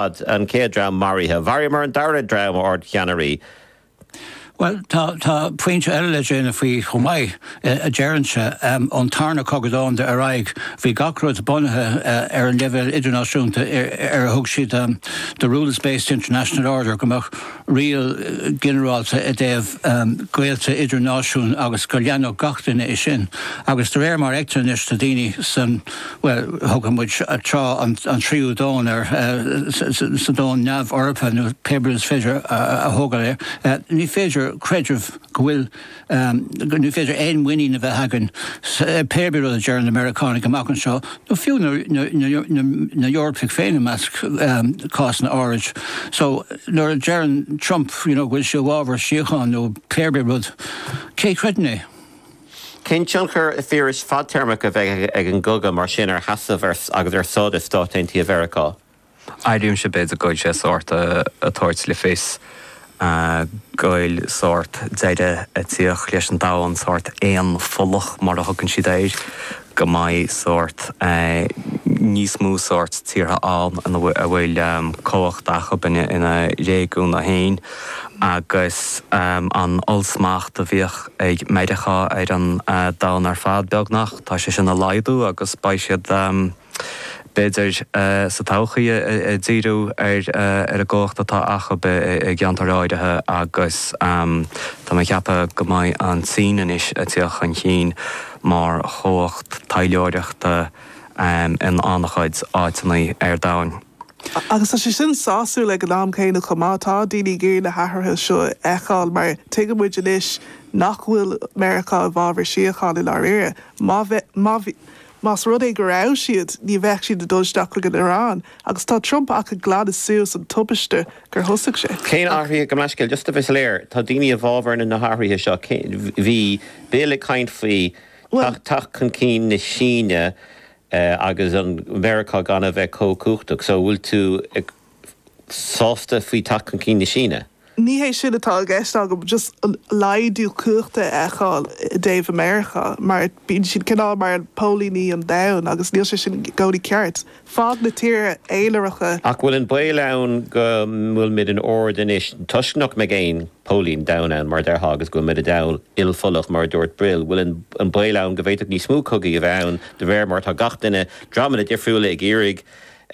An chéad dream maraithe. Mharaíomar an dara dream, a Ardcheannairí. Bhuel, tá, tá pointe eile le déanamh faoi chomh maith, a deirimse. Ón tarna cogadh domhan ar aghaidh, bhí gach rud bunaithe ar an leibhéal idirnáisiúnta ar ar thug siad the rules-based international order, go mbeadh, riail ghinearálta i dtaobh gaolta idirnáisiún agus go leanfadh gach duine é sin agus de réir mar a fheictear anois do daoine san, bhuel, thugadh muid tráth an tríú domhan air, sa domhan neamh-Eorpach nó pé rud is féidir a thabhairt air, ní féidir creideamh go bhfuil go ní féidir aon mhuinín a bheith againn pé ar bith rud a deireann na Meiriceánaigh amach anseo, nó fiú na hEorpaigh féin i measc cásanna áirid. So, nuair a deireann Trump you know go bhfuil sé i bhfábhar síocháin nó pé ar bith rud, cé a chreideann é? Cén tionchar, a Phiarais, fadtéarmach a bheidh ag an gcogadh mar sin ar sheasamh agus ar stádas Stáit Aontaithe Mheiriceá? Airímse b'fhéidir go bhfuil sé sórt ag tabhairt le fios go bhfuil sórt deireadh ag tíocht leis an domhan, sórt aonpholach mar a thugann siad air, go mbeidh sórt níos mó sórt tíortha ann a bhfuil cumhacht acub ina réigiúin féin agus an ollsmacht a bhíodh ag Meiriceá ar an domhan ar fad beagnach, tá sé sin ag laghdú agus beidh siad. b'fhéidir, sa todhchaí ag díriú ar an gcumhacht atá acub i gceantair áirithe agus tá mé ag ceapadh go mbeidh an tSín anois ag tíocht chun chinn mar chumhacht taidhleoireachta in an-chuid áiteanna ar domhan. Agus tá sé sin sásúil ag an am céanna chomh maith. Tá daoine ag iarraidh na hathruithe seo a fheiceáil mar tuigeann muid anois nach bhfuil Meiriceá i bhfabhar síocháin i ndáiríre. Má bheadh, má bhí, Más rud é go raibh siad, ní bheadh siad ag dul isteach chuig an Iaráin agus tá Trump ach ag glanadh suas an tubaiste gur thosaigh sé. Cén athraithe, gabh mo leithscéal? Just a bheith soiléir, tá daoine i bhfabhar na hathruithe seo. Bhí Bill ag caint faoi teacht chun cinn na Síne agus an Mheiriceá gan a bheith chomh cumhachtach. So, an bhfuil tú ag sásta faoi teacht chun cinn na Síne. Ní hé sin atá i gceist agam, just an laghdú cumhachta a fheiceáil i dtaobh Meiriceá, mar bíonn siad cineál mar póilíní an domhain agus níl sé sin i gcónaí ceart. Fág na tíortha aonaracha. Ach bhfuil an baol ann go bhfuil muid in ard anois toisc nach mbeidh aon póilín domhain ann, mar a déarfá, agus go bhfuil muid i domhan ilpholach, mar a dúirt Bill? Bhfuil an baol ann go bhféadfadh níos mó cogaí a bheith ann de réir mar atá gach duine dreamanna difriúla ag iarraidh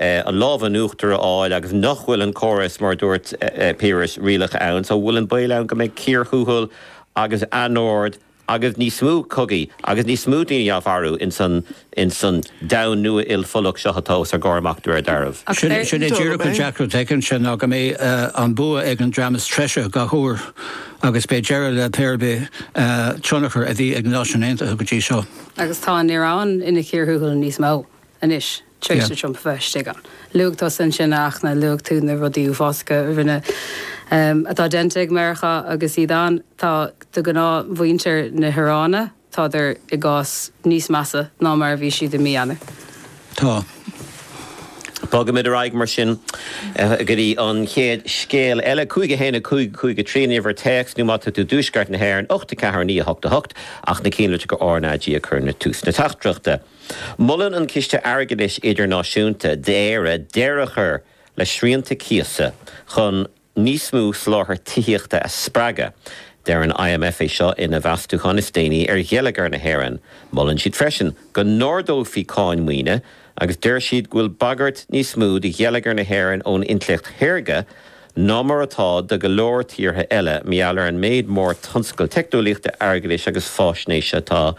an lámh in uachtar a fháil agus nach bhfuil an córas, mar a dúirt Piaras, rialach ann so bhfuil an baol ann go mbeidh cíor thuathail agus anord agus níos mó cogaí agus níos mó daoine á mharú in san domhan nua ilpholach seo atá os ár gcomhair amach de réir dealraimh. Sin é díreach an deacracht atá ansin ná go mbeidh an bua ag an dream is treise gach uair agus beidh deireadh le pé ar bith tionchar a bhí ag na Náisiúin Aontaithe go dtí seo. Agus tá an Iaráin ina chíor thuathail níos mó anois. tar éis do Trump a bheith istigh ann. Luaigh tusa ansin ach luaigh tú na rudaí uafásacha a rinne, atá déanta ag Meiriceá agus iad ann. Tá, do ghnáthmhuintir na hIaráine, tádar i gcás níos measa ná mar a bhí siad i mí Eanáir. Tá. Bogfaimid ar aghaidh mar sin go dtí an chéad scéal eile, 5 1 5 5 3 an uimhir téacs nó má tá tú i dtuaisceart na hÉireann, 8 4 9 8 8, ach a chinntiú gur RnaG a chuireann tú ag tús na teachtaireachta. Molann an Ciste Airgeadais Idirnáisiúnta d'Éire deireadh a chur le srianta cíosa chun níos mó soláthar tithíochta a spreagadh. Deir an IMF é seo ina mheastúchán is déanaí ar gheilleagar na hÉireann. Molann siad freisin go n-ardófaí cáin maoine agus deir siad go bhfuil bagairt níos mó ar gheilleagar na hÉireann ón intleacht shaorga, ná mar atá ar go leor tíortha eile, mar gheall ar an méid mór tionscail teicneolaíochta, airgeadais agus faisnéise atá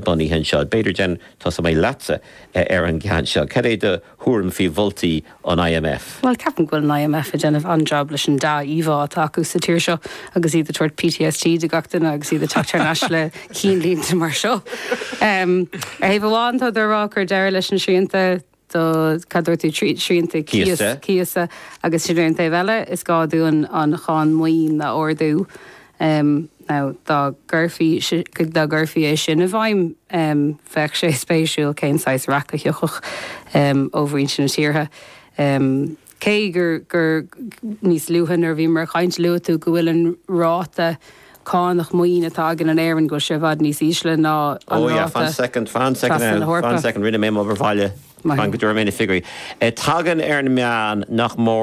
bunaithe anseo. B'fhéidir, go dtosóidh mé leatsa ar an gceann seo. Cad é do thuairim faoi mholtaí an IMF? Bhuel, ceapaim go bhfuil an IMF ag déanamh an-jab leis an dea-íomhá atá acu sa tír seo agus iad ag tabhairt PTSD do gach duine agus iad ag teacht thar n-ais le cinnlínte mar seo. Ar thaobh amháin, tádar ag rá cur deireadh leis na srianta, do, cad dúirt tú, srianta cíosa, cíosa agus ansin ar an taobh eile is gá dúinn an cháin maoine a ardú now dá gcuirfí, dá gcuirfí é sin i bhfeidhm bheadh sé spéisiúil cén saghas raic a thiocfadh ó mhuintir na tíortha. Cé gur níos luaithe nuair a bhíomar ag caint luaigh tú go bhfuil an ráta cánach maoine atá againn in Éirinn go bhfuil sé i bhfad níos ísle ná an ráta trasna na hEorpa. Ó yeah, fan second, fan second now, fan second, rinne mé m'obair bhaile, fan go dtabharfaidh mé na figiúirí. Tagann ar an meán nach mór